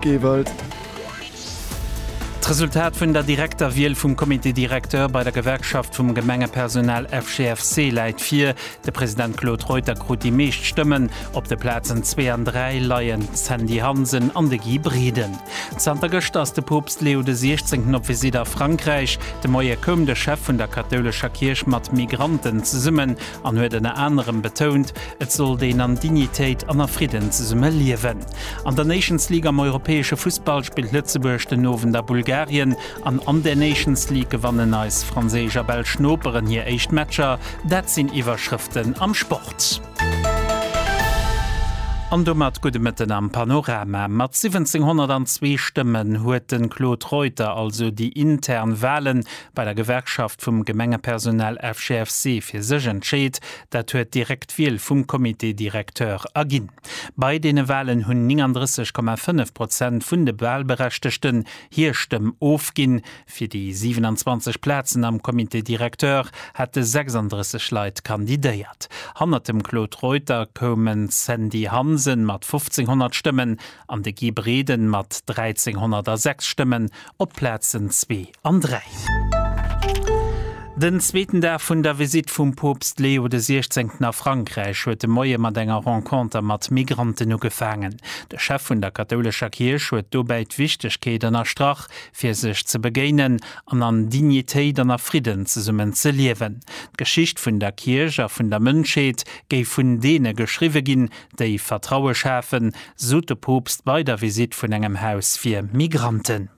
Gievellt. D'Resultat vun der direkter Wiel vum Comité directeur bei der Gewerkschaft vum Gemengepersonal FGFC läit vir. De President Claude Reuter krut déi meescht Stëmmen. Op de Plazen zwee an dräi leien d'Sandy Hansen an de Guy Briden. Zanter gëschter ass de Poopst Leo de Siechzéngten op Visitt a Frankräich. De Moie koum de Chef vun der kathoulescher Kierch mat Migranten zesummen. an huet ënner anerem betount, et sollt een an Dignitéit an a Fridden zesumme liewen. An der Nations League am europäesche Fussball spillt Lëtzebuerg den Owend a Bulgarien an an der Nations League gewannen eis franséisch a belsch Noperen hir éischt Matcher. Dat sinn Iwwerschrëften am Sport. An domat gudde Mëtten am Panorama. Mat 1702 Stëmmen huet de Claude Reuter also déi intern Wahlen bei der Gewerkschaft vum Gemengepersonal FGFC fir sech entscheet, dat huet direkt Wiel vum Comité directeur erginn. Bei deene Walen hunn 39,5 Prozent vun de Walberechtegten hir Stëmm ofginn. Fir déi 27 Plazen am Comité directeur hate 36 Leit kandidéiert. Hannert dem Claude Reuter koumen d'Sandy Hansen mat 1.500 Stëmmen an de Guy Breden mat 1.306 Stëmmen op d'Plazen zwee an 3. Den zweeten Dag vun der Visitt vum Poopst Leo de 16 a Frankräich huet de Moie mat enger Renconter mat Migranten ugefaangen. De Chef vun der kathoulescher Kierch huet dobäi d'Wichtegkeet ënnerstrach, fir sech ze begéinen an an Dignitéit an a Fridden zesummen ze liewen. D'Geschicht vun der Kierch a vun der Mënschheet géif vun deene geschriwwe ginn, déi Vertraue schafen, sot de Poopst bei der Visitt vun engem Haus fir Migranten.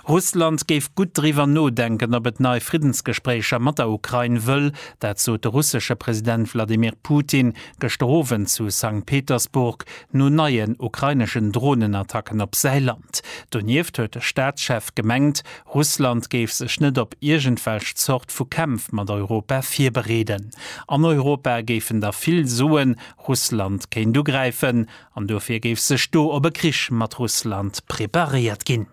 Russland géif gutt driwwer nodenken, ob et nei Friddensgespréicher mat der Ukrain wëll. Dat sot de russesche President Wladimir Putin gëschter Owend zu Sankt Petersburg no neien ukraineschen Dronenattacken op säi Land. Donieft huet de Staatschef gemengt, Russland géif sech net op iergendwelch Zort vu Kämpf mat Europa virbereeden. An Europa géifen da vill soen, Russland kéint ugräifen. An dofir géif sech do op e Krich mat Russland preparéiert ginn.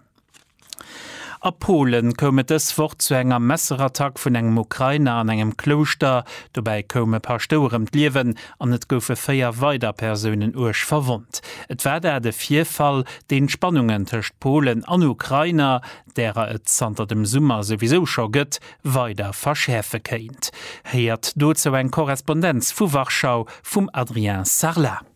A Polen koum et dës Woch zu enger Messerattack vun engem Ukrainer an engem Klouschter. Dobäi koum e Paschtouer ëm d'Liewen an et goufe véier weider Persounen uerg verwonnt. Et war dat e Virfall, deen d'Spannungen tëscht Polen an Ukrainer, därer et zanter dem Summer souwisou scho gëtt, weider verschäerfe kéint. Héiert dozou eng Korrespondenz vu Warschau vum Adrien Sarlat.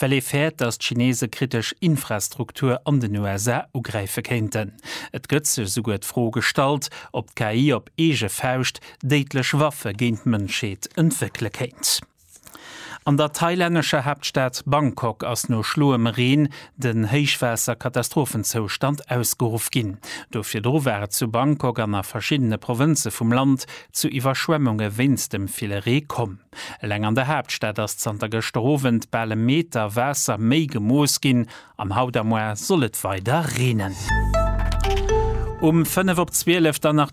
well ee fäert, datt d'Chinese kritesch Infrastruktur an den USA ugräife kéinten. Et gëtt sech esouguer d'Fro gestallt, ob d'KI op eege Fauscht déidlech Waffe géint d'Mënschheet entwéckele kéint. An der thailännescher Haaptstad Bangkok ass no schloem Reen den Héichwaasser-Katastrophenzoustand ausgeruff ginn. Do virdru war et zu Bangkok an a verschiddene Provënze vum Land zu Iwwerschwemmunge wéinst dem ville Ree komm. Eleng an der Haaptstad ass zanter gëschter Owend bal e Meter Waasser méi gemooss ginn an haut am Moarn soll et weider reenen. Um fënnef op zwielef dann nach